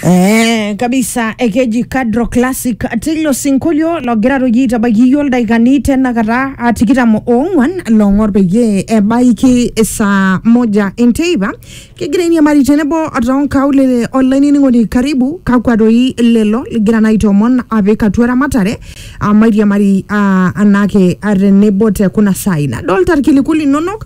Eh, kabisa ekeji kadro classic tilo sinkolio logira roji tabakiyo ildaikani tenakata ah, tikitam oong'wan long'or peyie ebaiki saa moja enteipa kigira iniamari tenebo toonkaulele olainining'oni karibu kakwa doi lelo ligira naa aitoomon apik atua ramatare ah, mairiamari ah, anake ah, tenebo te kuna saai nadolta irkiliku linonok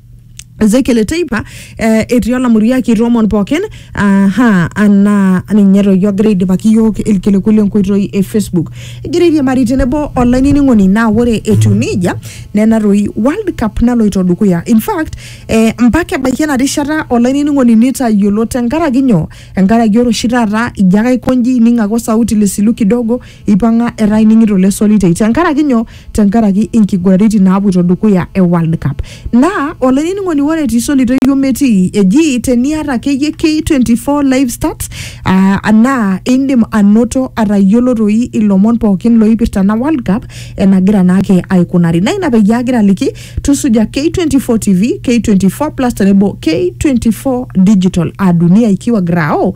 Ezekiel teipa eh, etii olamuriak itoomon pookin aha anaa ninye toi ogira aidipaki iyiook ilkiliku lenkoitoi e Facebook. Egira airiamari tenebo olainining'oni naa ore etiu nejia nena toi World Cup naloito dukuya. In fact eh, mpaka ebaiki ena rishata olainining'oni nitayiolo tenkaraki nyoo? Enkaraki ore oshi taata ijo ake aiko inji ining ake osauti lesilu kidogo Eipang'a etaa ening'ito le Solitei tenkaraki nyoo? Tenkaraki inkiguraritin naapuoito dukuya e World Cup. Naa olainining'oni ore etii Solitei iyiok metii eji teniata akeyie K24 live stats aa naa indim anoto atayiolo doi ilomon pookin looipirta ena World Cup enagira naake aikunari. Naa ina peyie agira aliki tusuja K24 TV, K24 Plus tenebo K24 Digital aa dunia ikiwa grao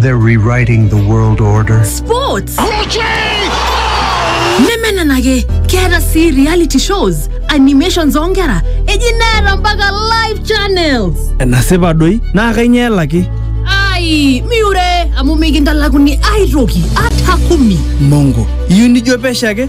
They're rewriting the world order. Sports! nemenenake keeta sii reality shows animations oonkera eji neeta mpaka live channels enasipa doi naa kainyoo elaki ai miure amu mikintalakuni aitoki ata kumi mongo iyieu nijo pesho ake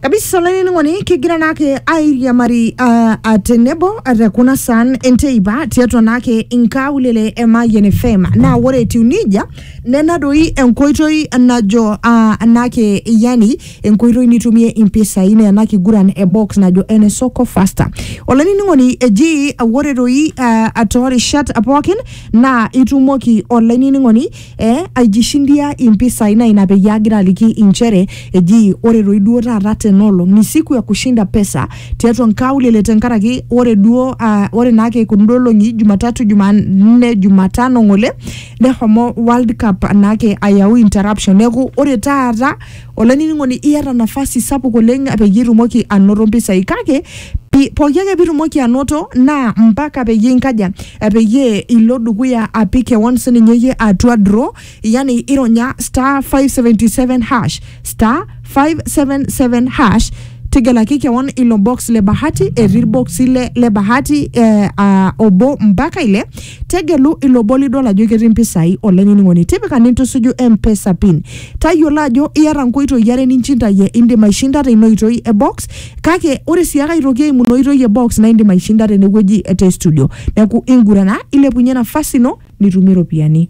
kabisa olainining'oni kigira naake airiamari uh, atenebo te kuna saan enteipa tiatua naake inkaulele e Mayian FM naa ore etiu nejia nena doi enkoitoi najo uh, naake yani enkoitoi nitumie impisai naa ena kiguran e box najo ene soko faster olainining'oni eji ore doi uh, toorishat pookin naa itumoki olainining'oni eh, aijishindia impisai na ina peyie agira aliki inchere eji ore toi duo taata tenolong ni siku ya kushinda pesa tiatua nkaulele tenkaraki ore duo uh, ore naake kundo olong'i jumatatu jumanne jumatano ng'ole nehomo world cup naake ayau interruption neeku ore taata Olainining'oni iyata nafasi sapuk oleng peyie itumoki anoto mpisai kake pi- pooki ake pitumoki anoto naa mpaka peyie inkaja eh, peyie ilo dukuya apik kewon sininye iyie atua draw yani ironya star 577 hash star 577 hash tegelaki kewon ilo box le bahati etii irboksi le, le bahati eh, ah, obo mpaka ile Tegelu ilo obo lidol ajo ketii mpisai olainining'oni. Tipika nintusuju M-Pesa pin. Tayiolo ajo iyata nkoitoi are ninchintayie. Indim aishinda teina oitoi e box kake ore sii ake aitoki eimu ina oitoi e box naa indim aishinda tenewueji te studio. Neeku ingurana ilepunye nafasi ino nitumie ropiyiani.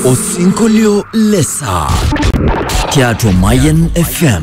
Osinkolio le saa tiatua Mayian FM.